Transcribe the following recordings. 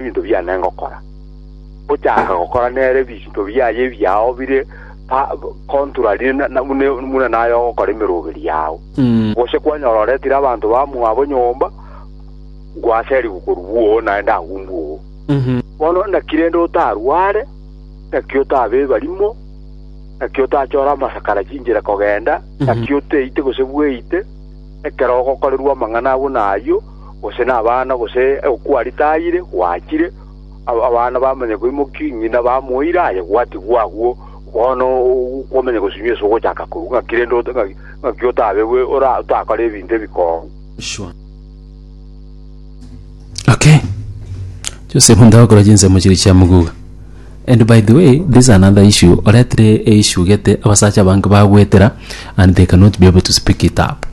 ebinto biane ngokora. Gochaka gokora nere ebinto biaye ebiao bire pa contrary na- na- bune buna naye ogokora emeroberi yao. Gose kwanyora oretire abanto bamwabo nyomba, gwaserigwe korwa oo, naende agwo mbwa oo. Bono naki rende otarware, naki otabeba rimo, naki otachore amasakara chinchera kogenda, naki oteite gose bweite, ekero ogokorerwa amang'ana abuna ayio, gose nabana, gose okwa ritaire gwachire, aba- abana bamanya koimoki, ng'ina bamoire aye gwatigwa agwo, bono o- kwamanya gosunywa ase ogochaka korwa ng'aki rende ota- ng'aki- ng'aki otabegwe ora- otakore ebinto ebikong'u. Shwa. Okay. Joseph ndagokora chinsemo chiria chia moguga. And by the way, this is another issue. Oretire e issue gete abasacha abange bagwetera and they cannot be able to speak it up.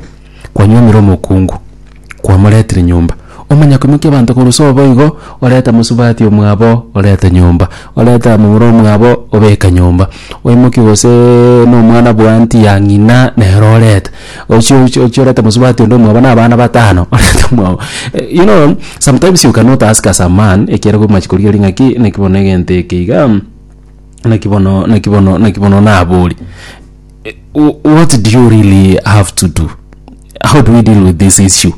Kwanyuomire omokungu, kwamoretire nyomba. Omanya koimokia abanto korwa iso boigo, oreta mosubati omwabo orete nyomba, orete abamura omwabo obeka nyomba, oimokie goseee nomwana bwanti ya ng'ina nere orete, ochie ochie ochie orete mosubati onde omwabo na abana batano orete omwabo you know sometimes you cannot ask as a man ekiagera omache korigereria ng'aki naki bono egento eke igaa naki bono naki bono naki bono nabori. what do you really have to do how do we deal with this issue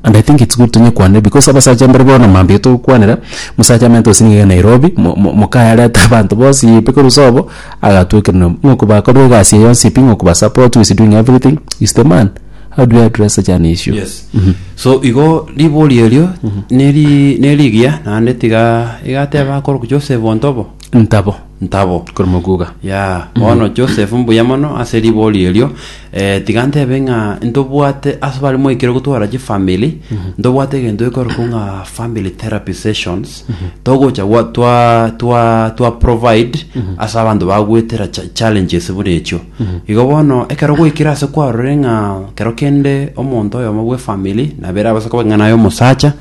and i think it's good tonye kwane because abasacha mbare bono mambia togokwanera musacha amanyete gose niga nairobi mo- mo- mokaya arete abanto bonsi pi korwa sobo agatwekerera nyomba ng'o kobakorire egasi eye yonsi pi ng'o kobasupport who is doing everything is the man how do we address such an issue yes so igo ribori erio neri nerigiya naende tiga igateba akoro joseph ontobo ntabo ntabo. Korwa mokuuga. Ya, bono Joseph mbuya mono ase riborio erio. Eh, tiga ntebe ng'a ntobwate ase bare moikire gotwara chifamili, ntobwate egento ekorokwa ng'a family therapy sessions, togocha gwa twa twa twa provide ase abanto bagwetera cha- challenges buna echio. Igo bono ekero gwaikire ase kwarorire ng'a kero kende omonto oyomo bw'efamili nabere abaisa koba ng'a naye omosacha,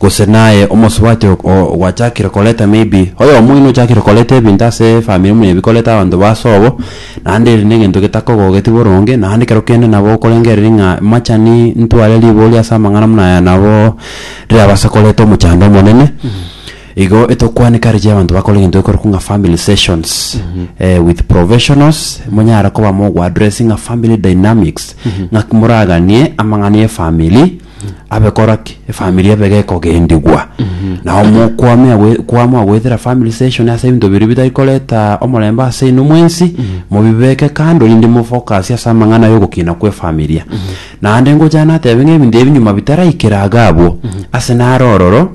Gose naye omosubati o- o- ogwachakire koreta maybe oyomo oino ochakire koreta ebinto ase efamiri muna ebi koreta abanto ba sobo, naende eri negento getakogogeti boronge, naende ekero kende nabo okorengereria ng'a machani ntware ribori ase amang'ana muna aya nabo rirabase koreta omochando omonene, igo etokwane encourage abanto bakore egento gekorokwa ng'a family sessions with professionals, monyare koba mogo addressinga family dynamics, ng'aki moraganie amang'ana ya efamiri, abe kora ki efamiri ebe gekogendigwa nao mokwamea gwe- kwamua goetera family session ase ebinto biria bitari koreta omorembe ase inwe mwensi mobibeke kando rinde mo focus ase amang'ana ya ogokina kwa efamiria naende ngochaka natebe ng'a ebinto ebi nyuma bitaraikera iga abwo ase naro ororo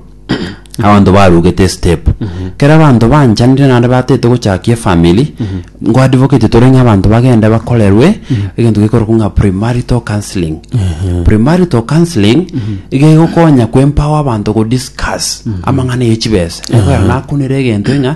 abanto barugete estep kero abanto banchanire naende batete gochakia efamiri nko advocate tore ng'a abanto bagende bakorerwe egento gekorokwa ng'a primarital counselling primarital counselling iga egokonya ko empower abanto go discuss amang'ana ye chibesa egoyora nakunire egento ng'a.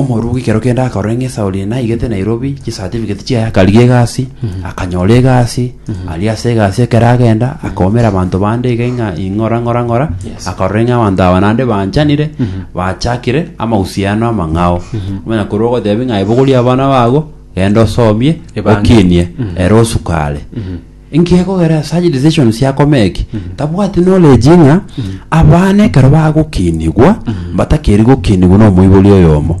Omorwoti ekero kende akarora ng'a Esauli naigete Nairobi chisatifiketi chiaye akarigia egasi akanyora egasi aria ase egasi ekero agenda akaumera abanto bande iga ng'a ing'ora ng'ora ng'ora akarora ng'a abanto aba naende banchanire bachakire amausiano amang'ao onye korwa ogotebia ng'a aye bogoria abana bago genda osomie Ebange. okinie ere osukare Inki ekogera ase aye decisions chiakomee eki? Tabwati knowledge ng'a abana ekero bagokinigwa mbatakeiri gokinigwa na omoibori oyomo.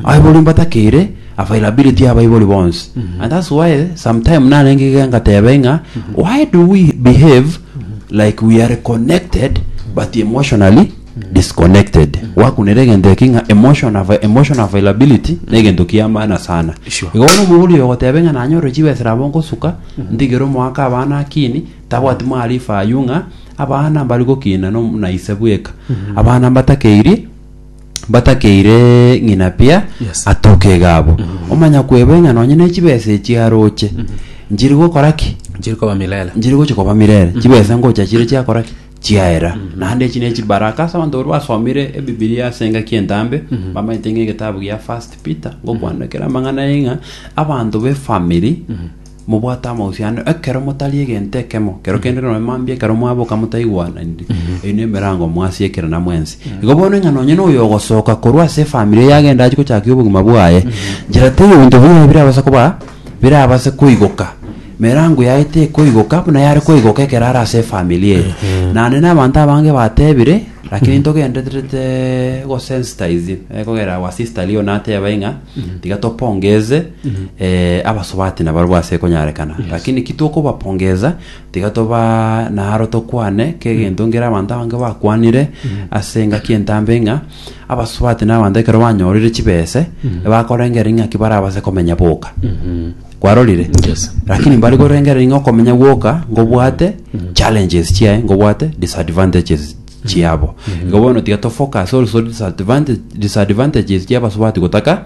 Abaibori mbatakeire availability ya abaibori bonsi. And that's why sometime narenge iga ngatebe ng'a why do we behave like we are connected but emotionally disconnected. Gwakunera egento eki ng'a emotion ava- emotion availability na egento kia maana sana. Sure. Igo bono omoibori oyo ogotebe ng'a nanyore chibesa nabo nkosuka Ndigire omoaka abana akini, tabwati maarifa ayio ng'a abana mbare gokina no- na ise bweka. Abana mbatakeiri, mbatakeire ng'ina pia Yes. atoke iga abo. Omanya kwebwe ng'a nonye ne chibesa echi aroche, nchiri gokora ki? Nchiri koba milele. Nchiri gocha koba mirere. Chibesa ngocha chire chiakora ki? chiaera. Naende echi nechibaraka ase abanto baria basomire Ebibilia ase engaki entambe, bamanyete ng'a egetabu gia First Peter ngokwanera kera amang'ana aya ng'a abanto b'efamiri mobwate amahusiano ekero motari egento ekemo, ekero kende nonye mambia ekero mwaboka motaigwananiri, eyio nemerango mwasiekerana mwensi. Igo bono ng'a nonye na oyo ogosoka korwa ase efamiri eyio agende achi gochakia obogima bwaye, njera teiyo ebinto biri aye birabasa koba birabase koigoka. Emerango yaye tekoigoka buna yare koigoka ekero are ase efamiri eye. Naende na abanto abange batebire, lakini ntogendererete gosensitize, eh, kogera our sister Leo nateba ing'a, tiga topongeze, eh, abasubati nabarobwo ase konyarekana. Lakini ki tokobapongeza, tiga toba naro tokwane, kegento ngera abanto abange bakwanire ase engaki entambe ng'a, abasubati na abanto ekero banyorire chibese bakorengera ing'aki barabase komenya boka kwarorire Yes. lakini mbari korengera ing'o komenya gwoka ngobwate challenges chiaye ngobwate disadvantages chiabo igo bono tiga tofocus also disadvantage- disadvantages chia abasubati gotaka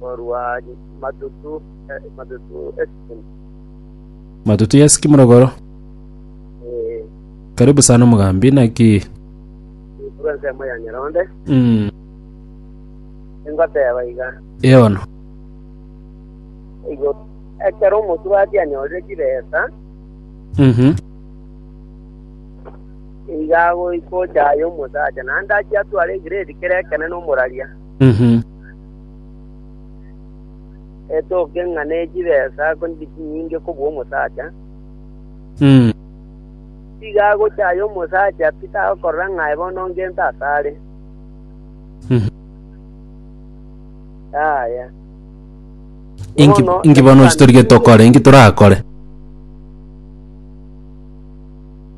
korwa matutu eh, matutu esikimu matutu ya sikimu rogoro eh, karibu sana omogambi naki korwa ensemo ya nyaronde mm, engoteba iga eono igo ekero omosurati anyorire chibesa Mhm. iga agoikochaye omosacha naende achia atware egrade kere ekene nomoraria Mhm. Etoke ng'a ne chibesa akonire chinyinge kobua omosacha, Mm. tiga agochaye omosacha pi tagokorora ng'a aye bono ngento asare. Mhm. Yaya. Inki Bono, inki bono ase torigetie okore? Inki torakore?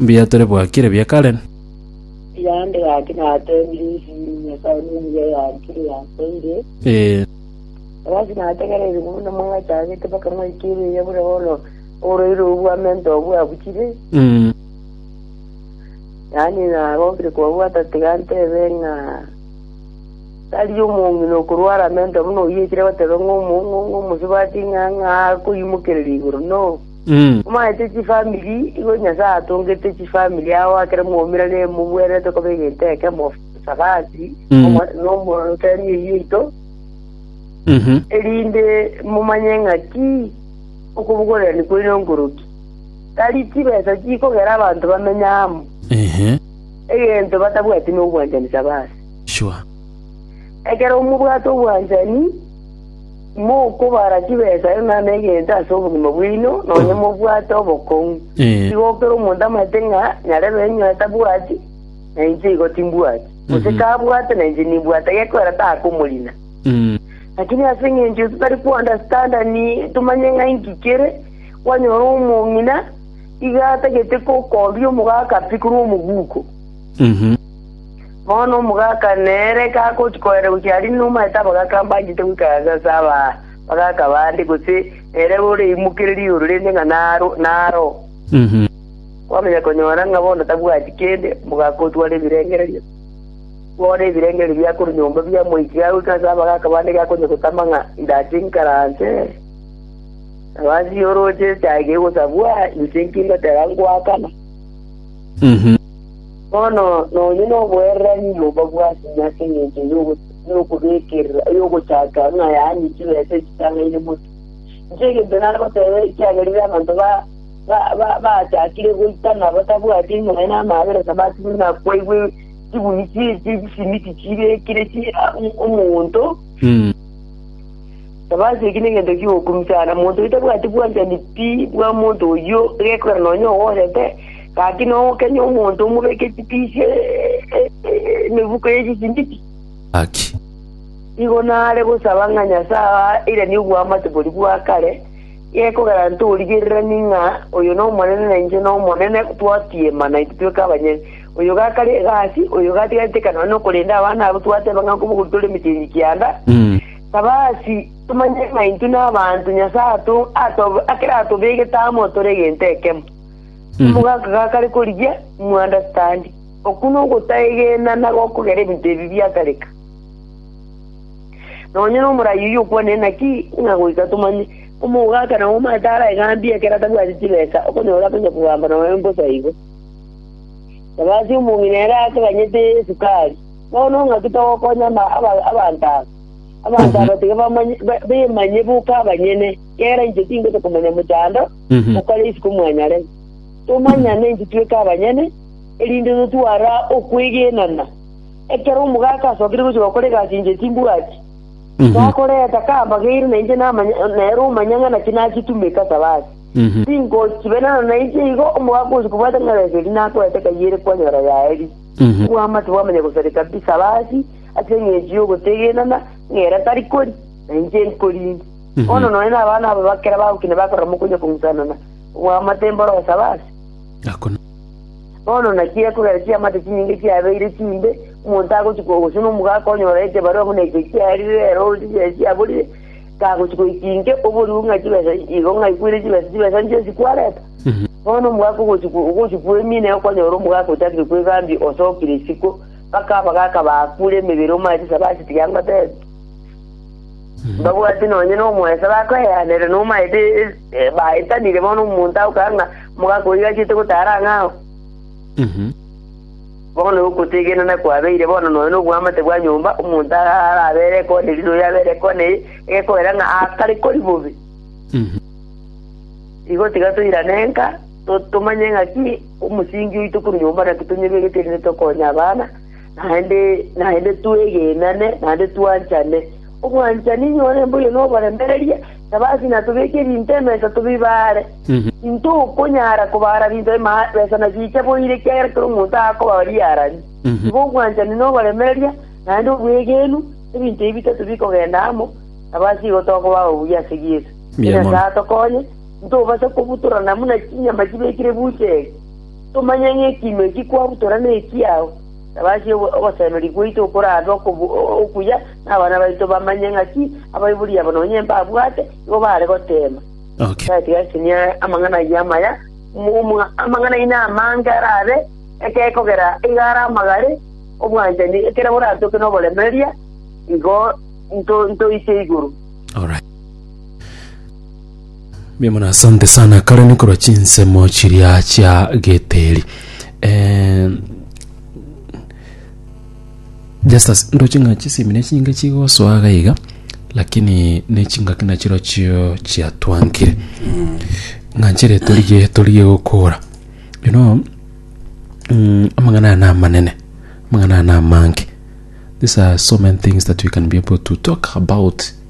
mbiatore bwakire bia kare. Yande gaki nateebire esini, Nyasae nomuya yankire, yansaire. Ee. Gaki nategereire buna mwachagete mpaka mwaika ere eya buna bono oroiro obwamento obwo abuchire. Mm. Yaani nagokire kobwata tiga ntebe ng'a tari omong'ina okorwara amento buna oyio ekire goteba ng'a omong'ong'o omosubati ng'a ng'a akoimokerera igoro, no. Omaete chifamiri, igo Nyasae atongete chifamiri ao aa kera mwaumerane mobwenerete koba egento ekemo, Sabati nomorota emio yaito, erinde momanye ng'aki okobogorerania kwaino nkoroki. Tari chibesa chikogera abanto bamenye amo, egento batabwati nobwanchani Sabati. Ekero mobwate obwanchani. Mokobara chibesa erio nane egento ase obogima bwaino, nonya mobwate obokong'u. Tigokera omonto amaete ng'a nyarebe inwe atabwati, na inche igo timbwati, gose kabwate na inche nimbwate, gekorera takomorina. Lakini ase engencho ise tari kwandastanda tomanye ng'a inki kere, kwanyora omong'ina iga atagete kokombia omogaka pi korwa omoguko. Bono omogaka nere kagochia kogenda gochia aria inwe omanyete abagaka mbanchete goikaransa ase abagaka bande, gose nere oraimokererie igoro rende ng'a naro. Kwamanya konyora ng'a bono tabwati kende, omogaka otware ebirengererio, twara ebirengererio bia korwa nyomba bia moika gagoika ase abagaka bande gakonya gotama ng'a indache inkaranse. Nabo ase igo oroche echaye kegosabwa, inche inki ngoteba ngoakana? Bono nonye noboererania oyomo bw'aseng'o ase engencho y'okobekerera eyogochaka ng'a yaani chibesa echitang'aine motu. Inche egento nare goteba ekiagera rire abanto baachakire goitana batabwati enyora na amaabera nabatigwe nakwaigwe chibuni chi'esimiti chibekire omonto, tabaseki negento ki'ogokumisa, na monto otabwati bwanchani pi bwa monto oyio, gekogera nonye ogochete. Gaki nogokenya omonto omobeke chitiishe emebuko ye chisibiti? Gaki. Nigo nare gosaba ng'a Nyasae airanie obwamate boria bwa kare, gekogera ntorigerererie ng'a oyo n'Omonene na inche n'Omonene twatiema na intwe tweka abanyene. Oyo gakare egasi, oyo gatigareteka nonya nokorenda abana abo twateba ng'a nkobogori tore emechie kianda, saba ase tomanye ng'a intwe nabanto Nyasae ato akeratobegete amo tore egento ekemo. Omogaka gakare korigia moandastandi, okwo nogotaegena na gokogera ebinto ebi biakareka. Nonya nomorai oyio okwanire naki ng'a goika tomanye, omogaka nao omanyete arae gambia ekero atabwati chibesa okonyora akonya kogamba noe mbosa igo. Sabasi omong'ina ere akaganyete esukari, bono ng'aki togokonya ama- aba- abanto aba? Abanto aba tiga bamanye- ba- bemanye boka abanyene, kera inche tingote komanya mochando, okore isiko mwanyare. Tomanyane inche tweka abanyene, erinde totwara okwegenana. Ekero omogaka asokire gochia gokora egasi inche timbwati, takoreta kambagaire na inche namanya nere omanya ng'a naki nachitumete ase abande. Tingochibenana na inche igo omogaka ogochia kobwata ng'a reso eria nakoete kayere kwanyora yaeri. Obwamate bwamanya gosareka kabisa ase abasi ase eng'encho y'ogotegenana, ng'ere tari kori, na inche nkorinde. Bono nonya nabana aba bakera bagokina bakorora mokonya kong'usanana, oboamate mborosaba ase. Akona. Bono naki ekogera chiamate chinyinge chiabeire chimbe, omonto agochi ko- gose nomogaka onyora ekebarua buna eke kiarire ere ore chibesa chiaborire, kagochi goika inke oborue ng'a chibesa igo ng'a aigwere chibesa, chibesa inche esi kwareta? Bono omogaka ogochi ko- ogochi kwemina igo kwanyora omogaka ochakire kwegambia osokire isiko, mpaka abagaka baakure emebere omanyete saba ase tiga ngotebe. Mbabwati nonye nomoeso bakoeanera nomaete baetanire bono omonto agokora ng'a mogaaka oyio achete gotara ang'e ao. Bono ogotegenena kwabeire bono nonya nobwamate bwa nyomba, omonto arabere ekona eri noyo abere ekona eye, egekogera ng'a aakare kori bobe. Igo tiga toirane nka, tomanye ng'aki omosingi oito korwa nyomba naki tonyebegetwe erinde tokonye abana. naende, naende twegenane, naende twanchane. Obwanchani nyore mboyio noboremereria, taba ase ng'a tobeke ebinto emesa tobibaare. Tintokonyara kobaara binto ema- besa na chiche boiire, ekiagera kera omonto akoba riarani. Igo obwanchani na oboremereria, naende obwegenu, ebinto ebi bitato bikogenda amo, taba ase igo tokoba ababuya ase Yeso. Mbuya mono. Nyasae atokonye, intobase kobutorana buna chinyama chibekire bucheri. Tomanya ng'a ekiimo eki kwarutora nekiao, tabasie ogosemeria gwaito okoraabe okuya, na abana baito bamanye ng'aki abaibori aba nonya mbabwate igo baare goteema. Tari tigaisenia amang'ana ayio amaya, amang'ana aino amange arabe ekero ekogera igo are amagare, obwanchani ekero boratoke noboremereria, igo ntoite igoro. Mbuya mono asante sana kare nikorwa chinsemo chiria chia geteri Eh, Justus ndoche ng'a chisemi ne chinge chigosoa gaiga lakini ne chingaki nachiro chio chiatwankire ng'a nchere torigie torigie gokora you know mm, amang'ana aya namanene amang'ana aya namange these are so many things that we can be able to talk about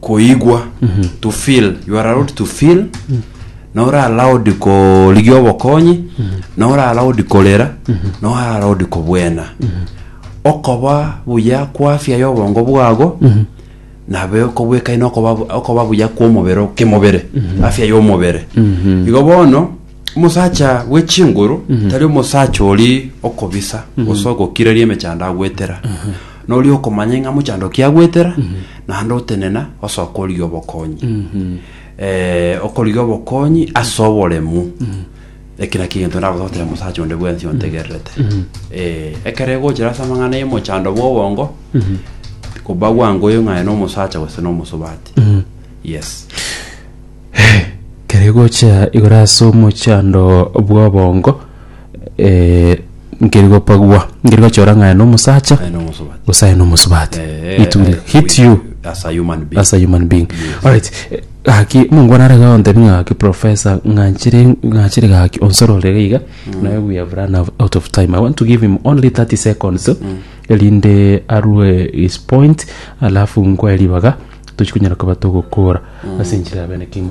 koigwa to feel you are allowed to feel na ore allowed korigia obokonyi na ore allowed korera na ore allowed kobwena okoba buya kwa afya ya obongo bwago nabe okobwekaine okoba bu- okoba buya kwa omobere o- kemobere afya ya omobere igo bono omosacha bwe chinguru tari omosacha ori okobisa gose ogokiraria emechando agwetera Noria okomanya ing'a mochando okiagwetera, naende otenena osoka origia obokonyi. Eh, okorigia obokonyi ase oboremu. Eki naki egento ndagototera mosacha onde bwensi ontegererete. Eh, ekero egochera ase amang'ana y'omochando bwa obongo, koba gwangoyo ng'a aye na omosacha gose na omosubati. Yes. kere gocha igoro ase omochando bwa obongo nkeri gopagua nkeri gochora ng'a aya nomosacha Aye nomosubati. gose aye nomosubati Eh, it will eh, hit we- you as a human being. as a human being Yes. alright eh, gaki mungu nare gontebi ng'a gaki professor ng'achire ng'achire gaki onsorore iga iga naye we have run out- out of time i want to give him only 30 seconds erinde arue his point alafu nkwe ribaga tochikonyara koba togokora ase enchera ya bene kima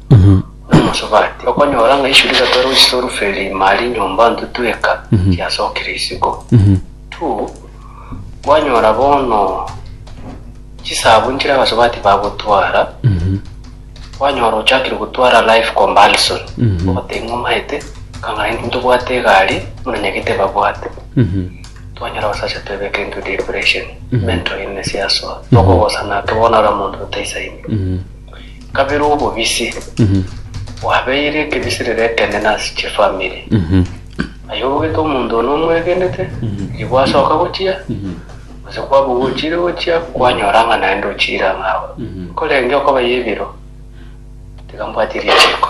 Omosobati okonyora ng'a isuri gatoera gochia oruferi ime aria enyomba ntutu eka chiasokire isiko. Tu, kwanyora bono chisabu nchire abasobati bagotwara, kwanyora ochakire gotwara life comparison, ogoteba ng'a omanyete kang'ana intwe ntobwate egari buna nyagete babwate. Twanyora abasacha twebeka into depression, mental illness yasoa, tokogosana ake bono ore omonto otaisaini. kabere obobisi bwabeire ekebisirero ekeene nase chifamiri. Aye obogete omonto one omwegenete, riria gwasoka gochia, gose kwaba ogochiire gochia, kwanyora ng'a naende ochiire ang'e agwo. Nkorenge okobaye ebiro, tiga mbwatie richiiko.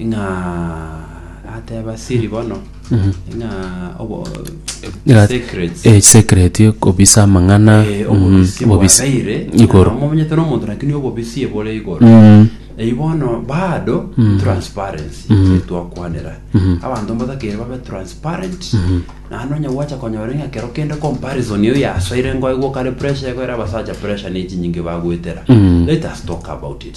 ng'a ateba siri bono ng'a obo Ira- secrets eh, secret kobisa amang'ana Eh, mm, obobisi obobisi bwaraire igoro omonyete nomonto lakini obobisi ebore igoro Mm, eyi bono bado transparency etwakwanera abanto mbatakere babe transparent naende onye gwacha konyora ng'a kero kende comparison eyo yasoire ngoigwa kare pressure egoera abasacha pressure ne echinyinge bagwetera let us talk about it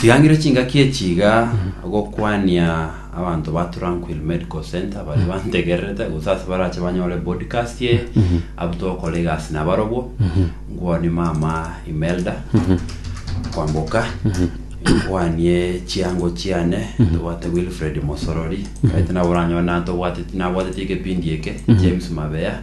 Tigangire chingaki echi iga gokwania abanto ba Tranquil Medical Center bari bantegererete gose ase barache banyore podcast eye abwo togokora egasi nabarobwo nkwanie mama Imelda kwamboka nkwanie chiango chiane tobwate Wilfred Mosorori aite nabo oranyore nantobwateti nabwateti ekepindi eke James Mabeya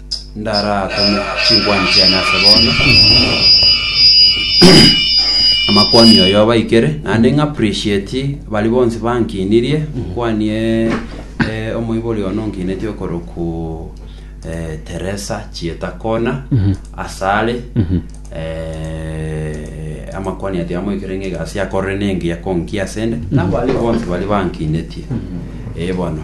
Ndaraatome chinkwaani chiane ase bono, amakwaani oyo abaikere, naende ng'a appreciate baria bonsi bankiinirie, nkwaani eh, omoibori one onkiinetie okorokwa eh, Teresa Chieta Kona, asare, eh, amakwaani atia amoikere ng'a egasi akorire nengiya konkia asende, nabaria bonsi baria bankiinetie, eh bono.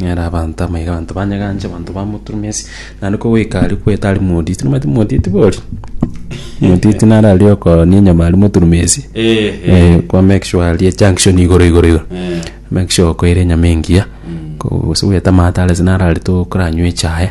Nere abanto amaiga abanto banyeganche, abanto bamoturumia ase, naende ko goika aria kwete aria moditi, nomanyete moditi boria? Moditi naro aria okooni enyama aria moturumia ase, eh, kwa make sure aria ejunction igoro igoro igoro, make sure okoira enyama engiya, ko- gose bwete amato are ase naro aria tokoranywa echae.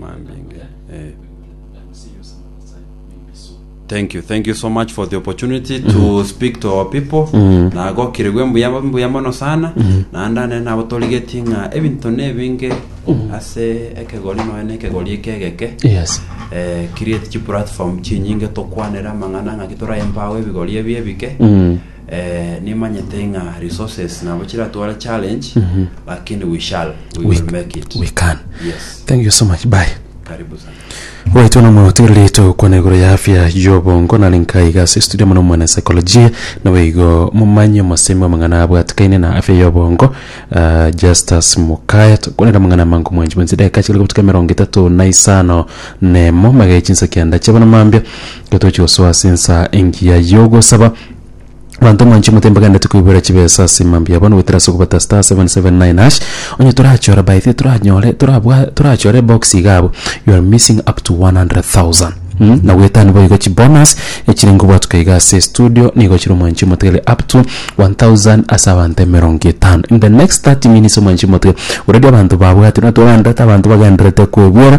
Mambinge, eh. Thank you, thank you so much for the opportunity to speak to our people. Nagokirigwe mbuya mbuya mono sana. Naende ane nabo torigetie ng'a ebinto nebinge ase ekegori noe na ekegori ekegeke. Yes. Eh, create chi platform chinyinge tokwanera amang'ana ng'aki toraye embago ebigori ebi ebike. Eh, nimanyete ng'a resources nabo chiratware challenge, lakini we shall, we will make it. we can Yes, thank you so much bye karibu sana. Right ono mono tigerire togokwana igoro ya afya y'obongo nare nkaiga ase studio mono mwana psychology nawe igo momanye omosemi w'amang'ana abwatikaine na afya y'obongo uh, Justus Mukaya tokwanera amang'ana amango mwanchi mwensi dakika chigere gotuka emerongo etato na isano nemo magaye chinsa kianda chiabana mambia Getochia gosoa ase ensa engiya y'ogosaba, abanto mwanche mote mbaganerete koiborera chibesa ase mambia abo, na goetera ase okobeta star seven seven nine hash, onye torachore by the toranyore torabwa torachore ebox iga abwo, you are missing up to 100,000 mm na goetania boigo chibonus echire ngobwatuka iga ase estudio nigo chire omwanchi omotiga ere up to 1,000 ase abanto emerongo etano in the next 30 minutes omwanchi omotiga already abanto babwate na twaganderete abanto bagendererete koebwera.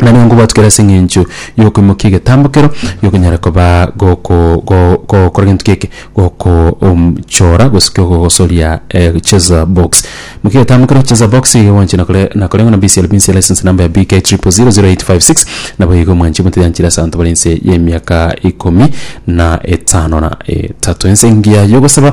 Nario nkobwatukera ase eng'encho y'okoimokia egetambo kero gikonyara koba goko go gokora gento geke goko um chora gose kegogosoria cheza box. Imokia egetambo kero cheza box iga gwancha na kore na koreng'wa na BCLB inse license number ya BK triple zero zero eight five six nabo igo mwanchi motoyanchire ase abanto bare inse y'emiaka ikomi na etano na etato. Ense engiya yogosaba.